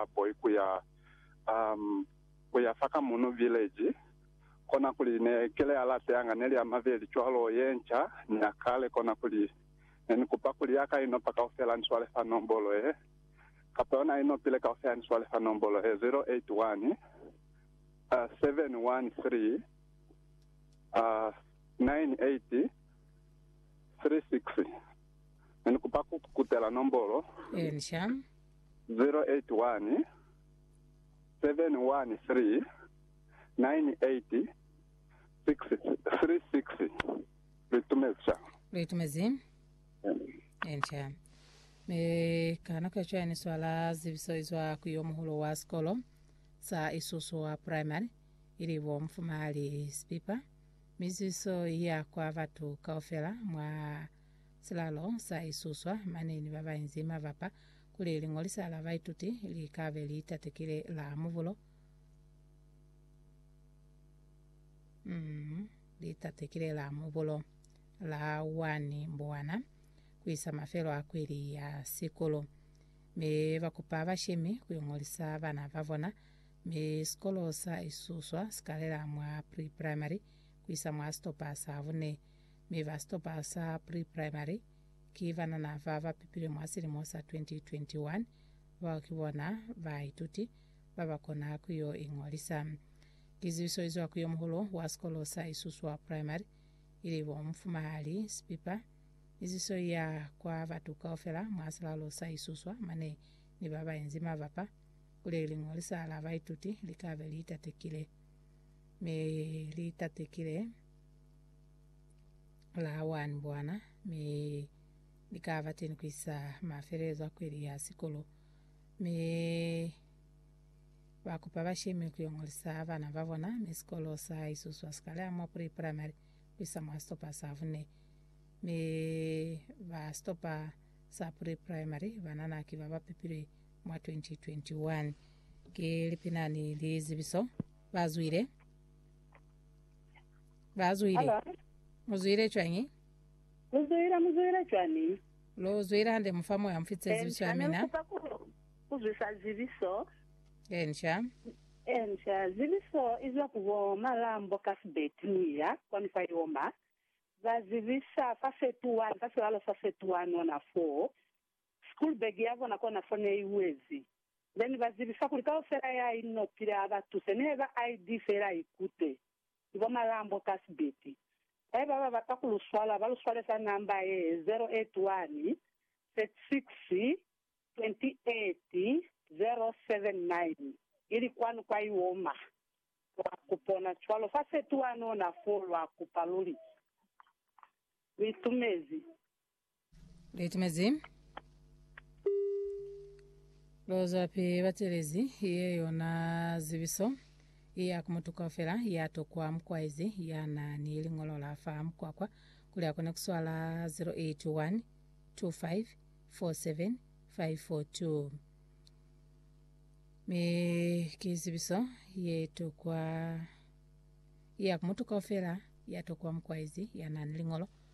ba boy ku ya, um, ku ya fa ka muno village. Konakuli ne kile ya late yanga neli ya mabeli cwalo, ye nca ni ya kale. Konakuli ne ni kupa kuli ya ka inopa kaufela ni swale fa nombolo ye, kapa yona inopile kaufela ni swale fa nombolo ye, 081 uh, 713 uh, 9836. Ne ni kupa ku kutela nombolo. Ye nca. 081 713 Lu itumezi? Enca. Mi ka nako ya cwañi ni swala zibiso izwa ku yo muhulu wa sikolo sa Isusu wa Primary, ili bo Mufumahali Sipipa, mi zibiso iya kwa batu kaufela mwa Silalo sa isuswa mane ni babainzi mabapa kuli liñolisa la baituti li kabe li tatekile la mubulo, mm, li tatekile la mubulo la 1 Mbwana kuisa mafelo a kweli ya sikolo. Mi bakupa bashemi kuiñolisa bana babona, mi sikolo sa isuswa sikalela mwa pre-primary kuisa mwa sitopa sa bune. mi ba sitopa sa pre-primary ki banana ba ba pepilwe mwa silimo sa 2021, bao ki bona baituti ba ba kona ku yo iñolisa. Lizibiso li zwa ku yo muhulu wa sikolo sa Isuswa Primary, ili bo Mufumahali Sipipa, ni zibiso li ya kwa batu kaufela mwa silalo sa Isuswa mane ni ba ba inzi mabapa kuli liñolisa la baituti li ka be li tatekile. Mi li tatekile. la wani bwana mi ni ka ba teni ku isa mafelelezo a kweli ya sikolo mi ba kupa ba shemi ku yongolisa bana ba bona mi sikolo sa isuswa sikale amwa pre primary ku isa mwa stopa sa vune mi ba stopa sa pre primary banana ki ba ba pipile mwa 2021 ke lipinani lizibiso ba zwile Ba zwile. Halo. Mu zwile cwañi? Lu zwile, mu zwile cwani? Lu zwile hande mu fa Moya mu fitise zibiso ya Enca, ne lu mina. kupa ku, ku zwisa zibiso. Enca. Enca, zibiso izwa ku bo Malambo Cuthbert muya kwani kwa Yoma, ba zibisa fa Setuan, fa silalo sa Setuan ona foo. School bag ya bona kona fo ne i wezi. Then ba zibisa kuli kaufela ya inopile a ba tuse, ne ba ID fela ikute. Ni bo Malambo Cuthbert. Haiba ba bata ku lu swala, ba lu swale ka namba ye, 081 36 28 079. Ili kwanu kwa Iwoma. Lwa ku pona cwalo fa fetuha nona foo lwa kupa luli. Lu itumezi. Litimezi lozwapi batelezi ye yona zibiso iya ku mutu kaufela ya tokwa mukwaezi ya na ni liñolo la fa mukwakwa kuli akone kuswala 081 25 47 542 mi ki zibiso ye tokwa iya ku mutu kaufela ya tokwa mukwaezi ya na ni liñolo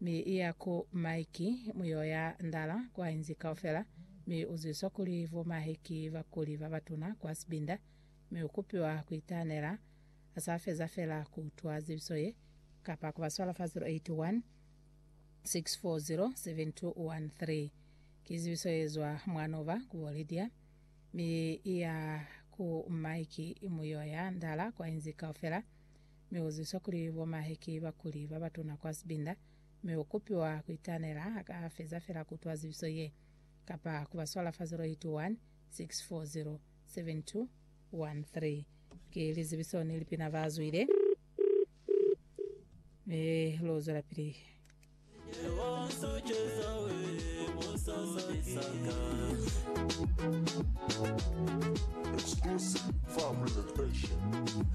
mi iya ku Mike muyo ya ndala kwa inzi kaufela, mi uzwiswa kuli bo mahe ki bakuli babatuna kwa sibinda, mi ukupiwa kuitanela asa feza fela kuutwa zibiso ye, kapa kuba swala fa 081 6407213. Ki zibiso yezwa mwanoba kubo Lydia, mi iya ku Mike muyo ya ndala kwa inzi kaufela, mi u zwiswa kuli bo mahe ki bakuli ba batuna kwa sibinda, mi u kupiwa ku itanela ha ka feza fela ku utwa zibiso ye, kapa ku ba swala fa 0816407213. Ki lizibiso ni lipina ba zwile, mi lu zwelapili. Exclusive for Brilliant Passion.